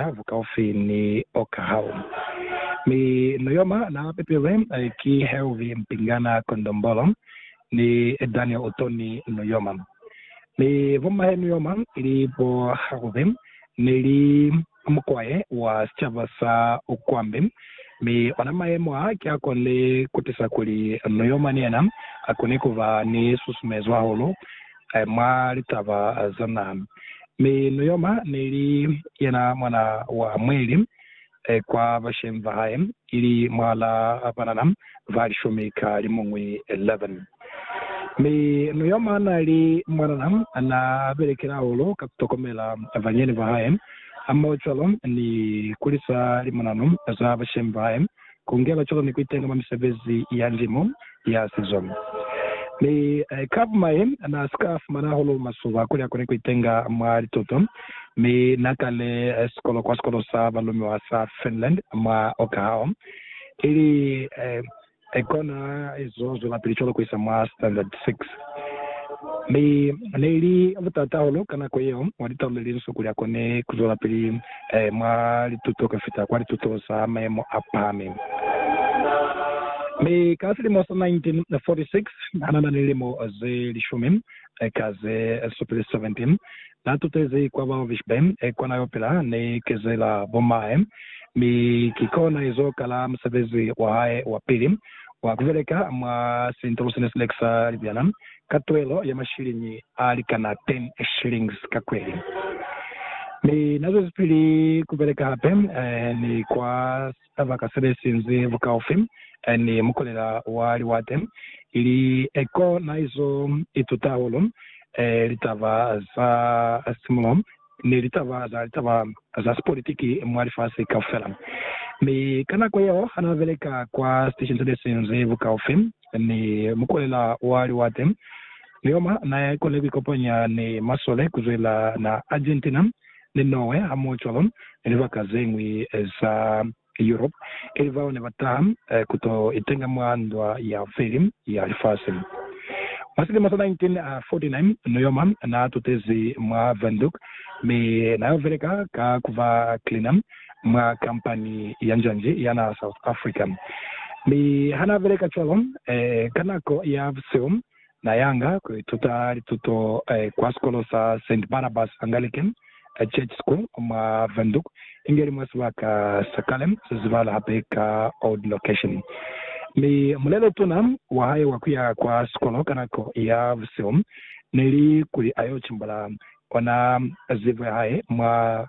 ha bu kaufi ni Oklahoma, mi no yo mwa na pepilwe ki Hervey Mpingana Kondombolo ni Daniel Utoni no yo mwa, mi bommahe no yo mwa ili bo Harvey ne li mukwae wa sicaba sa Ukwambi, mi ona mayemo a ki a konile kutisa kuli no yo mwa ni yena a kone kuba ni susumezwa hahulu mwa litaba zona. Mi Nuyoma neli yena mwana wa Mweli kwa bashemi ba hae, ili mwala banana ba lishumi ka limuñwi, 11. Mi Nuyoma nali mwanana na belekela holo ka kutokomela banyeni ba hae, hamoho cwalo ni kulisa limonano za bashemi ba hae ku ngela cwalo ni ku itenga mwa misebezi ya ndimo ya sizo. Mi Kav. Mahe na si ka fumana hahulu masuba kuli a kone ku itenga mwa lituto, mi na kale sikolo kwa sikolo sa balumiwa sa Finland mwa Okahao, ili kona izo zwelapili cwalo ku isa mwa Standard Six. Mi ne li butata hahulu ka nako yeo mwa litau le linsu kuli a kone ku zwelapili Ee, mwa lituto ka fita kwa litutong sa mayemo a pahameng. Mi ka silimo sa 1946, ha na na ni lilimo ze lishumi, eka ze supile 17, na tutezi kwa Walvish Bay, kwa na yo pila. Ni kezela bo mahe, mi ki kona izo kala musebezi wa hae wa pili wa ku beleka mwa sintulo sene si lekisa libyana. ka tuelo ya mashiliñi a likana 10 shillings ka kweli. Mi na zwezipili ku beleka hape ni kwa sibaka se be sinzi bukaufi ni mukolela wa liwate, ili ko na izo ituta hahulu litaba za simulo ni litaba za litaba za sipolitiki mwa lifasi kaufela. Mi ka nako yeo ha n'a beleka kwa sitesheni se ne si nzi bukaufi ni mukulela wa liwate, Lioma n'a koni ku ikopanya ni masole ku zwela na Argentina ni Norway hamoho cwalo ni libaka ze ñwi za Europe, ili bao ne ba taha ku to itenga mwa Ndwa ya Pili ya Lifasi. Mwa silimo sa 1949, Nuoma naa tutezi mwa Windhoek mi na yo beleka ka ku ba cleaner mwa kampani ya njanji ya naha South Africa. Mi ha naa beleka cwalo, ka nako ya busihu Na yanga ku ituta lituto kwa sikolo sa Saint Barnabas Anglican Church School mwa Windhoek, inge li mwa sibaka sa kale se zibahala hape ka Old Location. Mi mulelo tuna wa hae wa ku ya kwa sikolo ka nako ya busihu ne li kuli a yo cimbula ona zibo ya hae mwa